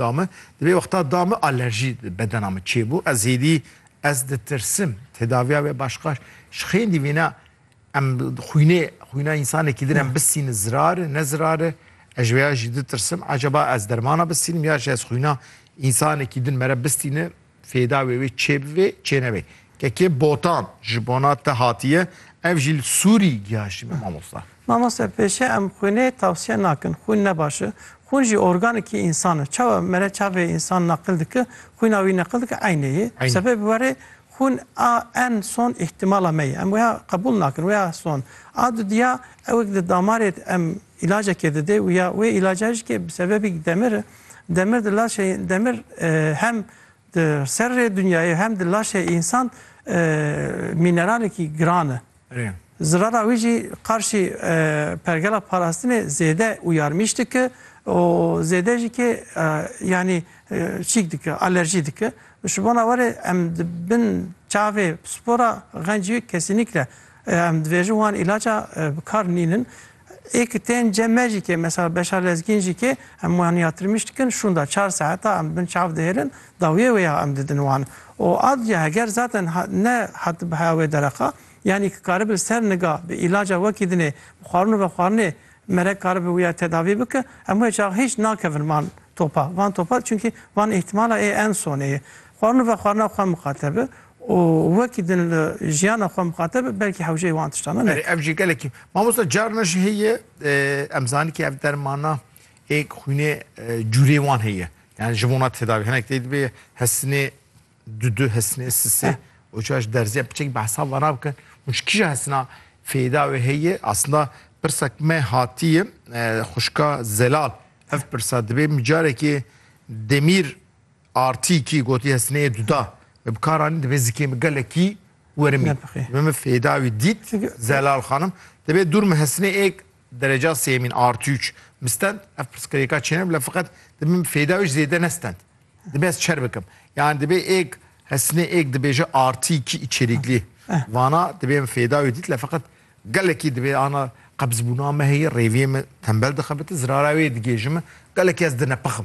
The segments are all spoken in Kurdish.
da min, di vê wexta da min alerjî di bedena min çêbû, ez hêdî ez ditirsim, tedaviya wê başqaş ji xêndî vîna em xwînê xwîna însanekî din em bisînin zirar e ne zirar e, ez ji vê ya jî ditirsim, ecaba ez dermana bisînim ya jî ez xwîna însanekî din mere bistîne Fêda wê wê çê bivê çê nevê. Kekê botan ji bona te hatiye ev jî li Sûrî gihaştîme mamosta. Mamoste pêşê em xwînê tewsiye nakin xwîn ne baş e xwîn jî organekî însan e çawa mere çavê însan neqil dike xwîna wî neqil dike eynê yê sebê bi werê xwîn a en son îhtimala me yê em wêha qebûl nakin wêha son a dudiya ewek di damarê em îlacekê dide û ya wê îlaca jî ke bi sebebî demir e, demir di laşê demir hem di serrê dinyayê hem di laşê însan mîneralekî giran e. Zirara wî jî qarşî pergela parastinê zêde û yarmîş dike û zêde jî ke yanî çîk dike, alerjî dike. Ji bona we re em di bin çavê spora xencî kesînîkre Em dibêjin wan îlaca bi kar nînin. Ê ki tên cem me jî kê mesela beşa lezgîn jî kê em wan ya tirmîş dikin şûnda çar saeta em di bin çav dihêlin dawiyê wê ya em didin wan. Û adliya heger zaten ne hatibe heya wê dereqa yanî ki karibe ser niga bi îlaca wekî dinê bi xwarin û vexwarinê merek karibe wî ya tedavî bike em wê çax hîç nakevin van topa van topa çunkî van îhtimala ê en sonê ye xwarin û vexwarina xwe miqate bi Û wekî din li jiyana xwe mixateb be belkî hewceyê wan tiştan e. Erê ev jî gelekî. Mamosta carna jî heye em zanî kî ev dermana ê xwînê cûrê wan heye. Yani ji bona tedavî hinek tê dibê hestinê du du hestinê sisê û çaş derzîya piçek behsa ve ra bikin. Hûn ji kîja hestina fêda wê heye aslında pirsa ki me hatiye xwişka Zelal ev pirsa dibê micarekê Demîr RTK gotiye sineyê duda me bi kar anîn divê zikê min gelekî werimî Nebixê. divê min fêda wî dît Çünkü- Zelal xanim divê dûr min hesinê êk dereca sêmîn artı üç min stend ev pirsgirêka çêne bila feqet divê min fêda wî ji zêde ne stend divê ez çer bikim yani divê êk hesinê êk dibêje artı iki içeriklî vana divê min fêda wî dît le feqet gelekî divê ana qebzbûna me heye rêviyê min tembel dixebite zirara wê digêjime gelekî ez dinepixim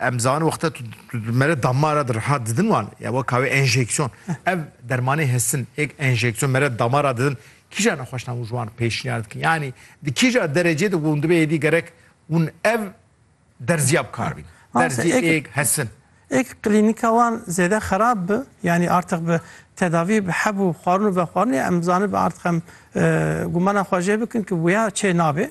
Em zanin wexta tu mere damara di riha didin wan ya wek kawê enjeksiyon. Ev dermanê hestin êk enjeksiyon mere damara didin kîja nexweşna hûn ji wan pêşniyar dikin. Yanî di kîja derecê de ku hûn dibe êdî gerek hûn ev derziya bikar bîn. Derzî êk hestin. Êk klînîka wan zêde xerab bi yanî artiq bi tedavî bi heb û xwarin û vexwarinê em zanin bi artiq em gumana xwe jê bikin ku wiya çê nabê.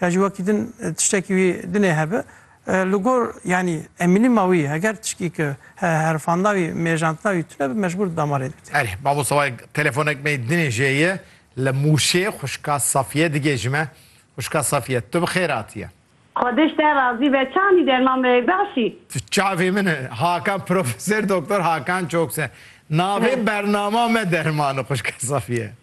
Ya ji wekî din tiştekî wî dinê hebe. Li gor yanî emînîma wî heger tişkî ki herifandina wî, mêjandina wî tune bi mecbûr di damarê de bite. Erê, babo sawayek telefonek me dinê jê ye, li Mûşê xwişka Safiye digêjim e. Xwişka Safiye, tu bi xêr hatiye. Xwediş te razî be, çandî derman me bexşî. Tu çavê min î. Hakan Profesor Doktor Hakan Çokse. Navê bernama me derman î xwişka Safiye.